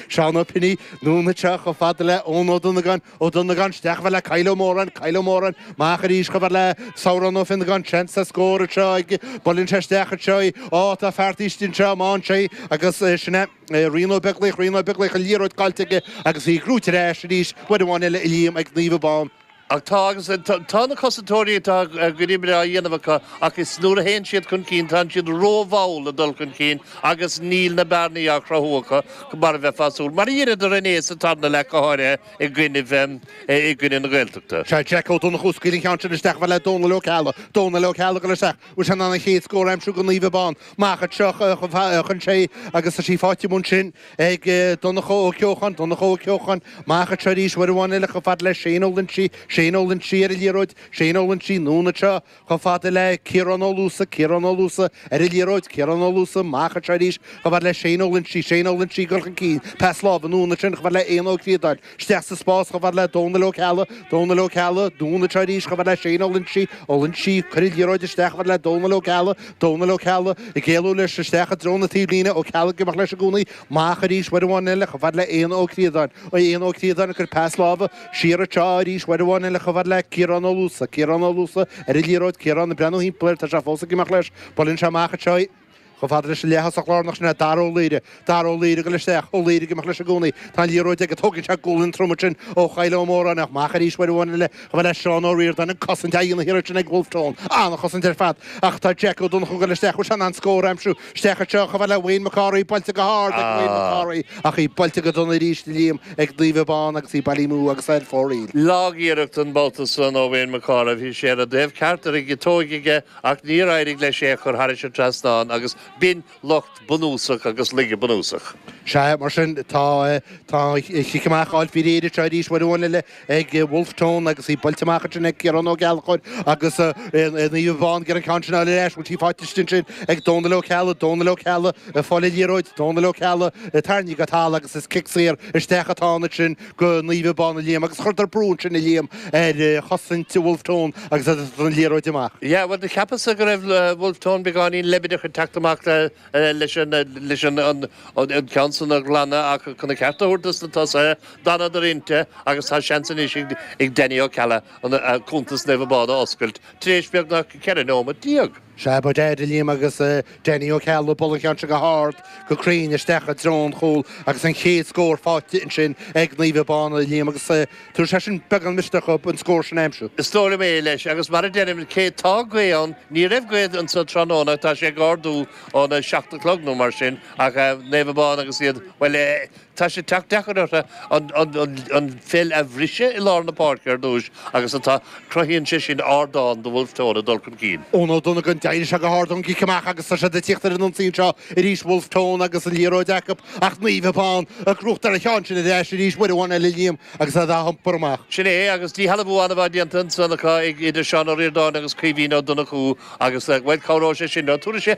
Seán Ó Piní, anonn anseo chomh fada le Eoin Ó Donagáin, Ó Donagáin, isteach chomh fada le Kyle Ó Móráin, Kyle Ó Móráin, amach arís chomh fada le Sárán Ó Fionnagáin, seans ar scór anseo, buaileann sé isteach anseo, á, tá faighte istigh anseo, amach anseo, agus sin é, Rian Ó Beaglaoich, Rian Ó Beaglaoich, an liathróid caillte aige agus í gnóite ar ais arís, uair amháin eile a Liam ag Naomh Abán, Ach tá, agus tá, na cosantóirí atá gnó breá á dhéanamh acu, ach is nuair a théann siad chun cinn, tánn siad ró-mhall ag dul chun cinn agus níl na bearnaí á chruthú acu mar a bheifeá ag súil, mar a dheineadar inné sa tarna leath, go háirithe i gcoinnibh, i gcoinnibh na Gaeltachta. Sea, Jack Ó Donnchú, ag scaoileadh an cheann sin isteach, chomh fada le Dónal Ó Ceallaigh, Dónal Ó Ceallaigh ag dul isteach, bhfuil sé in ann an chéad scór a aimsiú do Naomh Abán, amach anseo a chaitheann sé, agus tá sí fáighte amuigh ansin, ag Donncha Ó Ceocháin, Donncha Ó Ceocháin, amach anseo arís uair amháin eile chomh fada le Shane Ó Loinsigh, Shane Ó Loinsigh, ar an liathróid, Shane Ó Loinsigh, anonn anseo chomh fada le Ciarán Ó Luasa, Ciarán Ó Luasa, ar an liathróid, Ciarán Ó Luasa, amach anseo arís chomh fada le Shane Ó Loinsigh, Shane Ó Loinsigh, ag dul chun cinn, pas láimhe, anonn ansin chomh fada le Éanna Ó Críodáin, Isteach sa spás chomh fada le Dónal Ó Ceallaigh, Dónal Ó Ceallaigh, anonn anseo arís chomh fada le Shane Ó Loinsigh, Ó Loinsigh, ag cur an liathróid isteach chomh fada le Dónal Ó Ceallaigh, Dónal Ó Ceallaigh, ag éalú leis isteach i dtreo na taobhlíne, Ó Ceallaigh ag imeacht leis i gcónaí, amach arís uair amháin eile chomh fada le Éanna Ó Críodáin, Éanna Ó Críodáin ag cur pas láimhe siar anseo arís uair amháin eile chomh fada le Ciarán Ó Luasa, Ciarán Ó Luasa ar an liathróid, Ciarán ag breathnú thimpeall air, tá sé fós ag imeacht leis, buaileann sé amach anseo, Chomh fada leis an leaththosach lárnach sin é Dara Ó Laoire. Dara Ó Laoire, ag dul isteach, Ó Laoire ag imeacht leis i gcónaí. Tá an liathróid aige, tógann sé gualainn throm ansin ó Kyle Ó Móráin, ach amach arís uair amháin eile. Chomh fada le Seán Ó Ríordáin, an-chosaint á dhéanamh thiar ansin ag Bhulf Tón. An-chosaint ar fad. Ach tá Jack Ó Donnchú ag dul isteach, bhfuil sé in ann scór a aimsiú? Isteach anseo, chomh fada le Wayne Mac Cárthaigh, buailte go hard ag Wayne Mac Cárthaigh, ach í buailte go dona arís a Liam, ag Naomh Abán agus í bailithe amú agus é ar fóraoil. Lag-iarracht an babhta san ó Wayne Mac Cárthaigh, bhí sé ar an dtaobh ceart, ar an gciotóig aige Ach níor éirigh leis é a chur thairis an trasnán agus b'shin locht bunúsach agus laige bunúsach. Sea, mar sin, tá an chic amach á fháil faoi réir anseo arís, uair amháin eile, ag Wolfe Tone agus í buailte amach ansin ag Ciarán Ó Gallchóir agus Naomh Abán ag iarraidh an ceann sin a fháil ar ais, bhfuil sí faighte istigh ansin ag Dónal Ó Ceallaigh, Dónal Ó Ceallaigh, ag fáil an liathróid, Dónal Ó Ceallaigh, tarraingthe go talamh agus is cic saor isteach atá ann ansin. do Naomh Abán a Liam agus chuireadar brú ansin a Liam ar chosaint Wolfe Tone agus an liathróid amach. Yeah bhuel cheapas go raibh Wolfe Tone beagáinín leibideach ag teacht amach leis an an ceann san a ghlanadh ach chun a cheart a thabhairt dos na tosaithe d'fhanadar inti agus tá seans anois ag Danny Ó Ceallaigh cuntas Naomh Abán a oscailt tar éis beagnach ceithre neomat déag. Sea, gan dabht, a Liam, agus Danny Ó Ceallaigh ag bualadh an cheann seo go hard go cruinn isteach i dtreo an chúil agus an chéad scór faighte ansin ag Naomh Abán, a Liam, agus tabharfaidh sé sin beagán misneach dóibh an scór sin a aimsiú. Is dóigh liom é, leis, agus mar a deirim, cé tá gaoth ann, ní raibh gaoth anseo tráthnóna ach tá sé ag ardú óna seacht a chlog nó mar sin ach Naomh Abán agus iad, bhuel eh, Tá sé ag teacht deacair orthu an pheil a bhriseadh i lár na páirce ar dtús agus atá, cruthaíonn sé sin ardán do Bhulf Tón ag dul chun cinn. Eoin Ó Donnagáin, d'éirigh sé go hard ón gcic amach agus tá siad ag tíocht ar an ionsaí anseo arís, Bhulf Tón agus an liathróid acu ach Naomh Abán ag cruth ar a cheann, sin ar ais arís uair amháin eile Liam agus é á iompar amach. Sin é, agus díshealbhú an-mhaith déanta ansan acu ag idir Seán Ó Ríordáin agus Caoimhín Ó Donnchú agus, bhuel, cabhróidh sé sin leo. Tabharfaidh sé.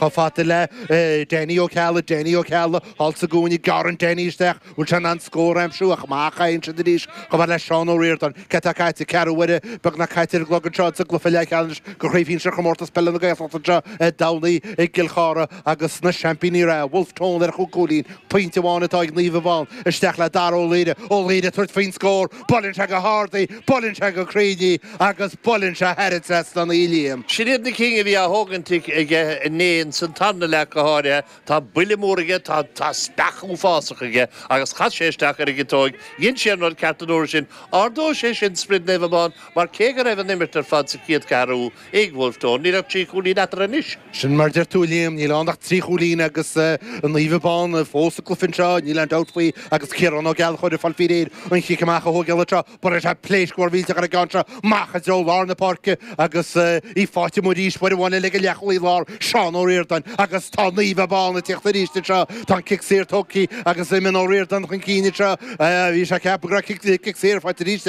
Chomh fada le Danny Ó Ceallaigh, Danny Ó Ceallaigh thall sa gcúinne, gearrann Danny isteach, bhfuil sé in ann scór a aimsiú ach amach a chaitheann siad arís, chomh fada le Seán Ó Ríordáin. Céard atá caite? Ceathrú uaire beagnach caite ar an gclog anseo sa gcluiche leathcheannais de chraobh shinsir Chomórtas Peile na Gaeltachta anseo ar ndóigh i gCill Chartha agus na seaimpíní reatha, Bhulf Tón ar chúig chúilín, pointe amháin atá ag Naomh Abán. Isteach le Dara Ó Laoire. Ó Laoire ag tabhairt faoin scór. Buaileann sé go hard í, buaileann sé go cruinn í agus buaileann sé thar an trasnán í, a Liam. Sin iad na cinn a bhí á thógaint aige inné ins an tarna leath go háirithe. Tá buille mór aige, tá speach uafásach aige agus chas sé isteach ar an gciotóig. Dhein sé an rud ceart an uair sin. Ardóidh sé sin sprid Naomh Abán mar cé go raibh an imirt ar fad sa chéad cheathrú, ag Bhulf Tón, níl ach trí chúilín eatarthu anois. Sin mar a deir tú, a Liam. Níl ann ach trí chúilín agus Naomh Abán fós sa gcluiche anseo, níl aon dabht faoi, agus Ciarán Ó Gallchóir ag fáil faoi réir an cic amach a thógáil anseo. Buaileann sé pléasc mhór mhillteach ar an gceann seo amach i dtreo lár na páirce agus í faighte amuigh arís, uair amháin eile ag an leathchúlaí láir, Seán Ó Riordáin, agus tá Naomh Abán ag tíocht arís anseo. Tá an cic saor tógtha agus imíonn Ó Riordáin chun cinn anseo. Bhí sé ag ceapadh go raibh cic saor faighte arís ag.